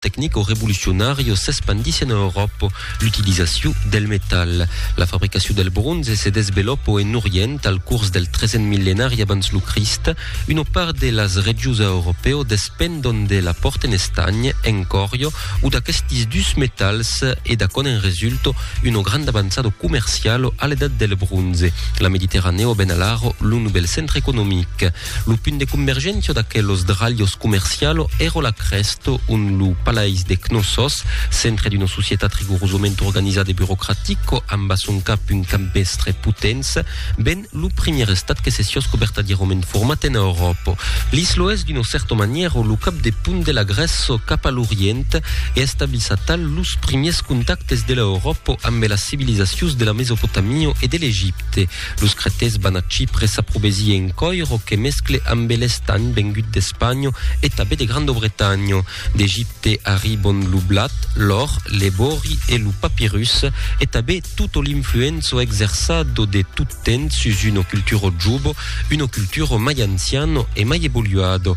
tecnico revolucionario s'espandís en Euròpa l'utilizacion del metal. La fabricacion del bronze se desvelòpo en Orient al curs del tresent millenari abans lo Crist. Una part de las regius a Europèo despendon de la pòrt en estanh, en còrrio, o d'aquestis dus metals e d'aquònt en resulto una granda avançado comercialo a l'edat del bronze. La Mediterranèo ben alaro lo novèl centre economic. Lo punt de convergentio d'aquelos dralhos comercialo ero la crèsto on lo palais de Cnossos, centre d'una societat rigorosament organizada e burocratico amb a son cap un campestre potents, ven lo primièr estat que se siosco vertadièrament format en Euròpo. L'islo es d'una cèrta manièro lo cap de punt de la Grèço cap a l'Orient e establís atal los primièrs contactes de l'Euròpo ambe las civilizacions de la Mesopotamio e de l'Egipte. Los cretés van a Chipre s'aprobesir en coiro que mescle ambe l'estanh vengut d'Espanho e tabé de Grandobretanho. D'Egipte arribon lo blat, l'òr, l'ebori e lo papirus e tabé tutto l'influenzo exerçado de tot temps sus uno culturo jubo, uno culturo mai anciano e mai evoluado.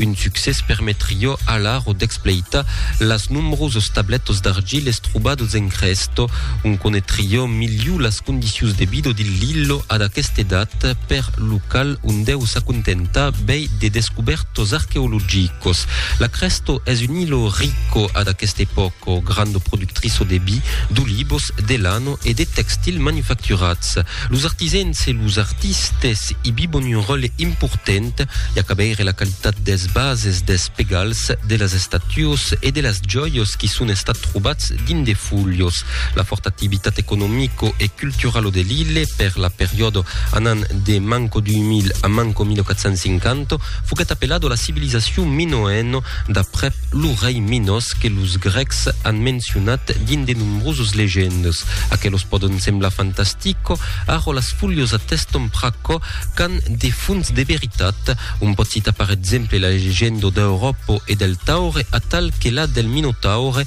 Un succès permetrió alaro d'expleitar las nombrosas tabletas d'argiles trobadas en Crèsto, ont conetrió miliu las condicions de vida dil Lillo ad aquesta edat, per lo cal un deu s'acontentar bèi de descubèrtas arqueologicas. La Crèsto es un illo rico ad aquesta epòca, granda productriça de vi, d'olivas, de lana e de textils manufacturats. Los artisèns e los artistes i bivon un ròtle important i a cabeire la qualitat des bases des pegals de las estatuas e de las jòias qui son estat trobats dins de fulhos. La fòrta activitat economico e culturalo de l'ille per la periòda anant de manco 2000 a manco 1450 Foguèt apelado la civilizacion minoèno d'aprèp lo rei Minos que los grècs an mencionat dins de nombrosas legendas. Aquelos pòdon semblar fantastico, ara las fulhas ateston pr'aquò qu'an de fons de veritat. Un pòt citar per exemple la legenda d'Europo e del Taure atal que la del Minotaure,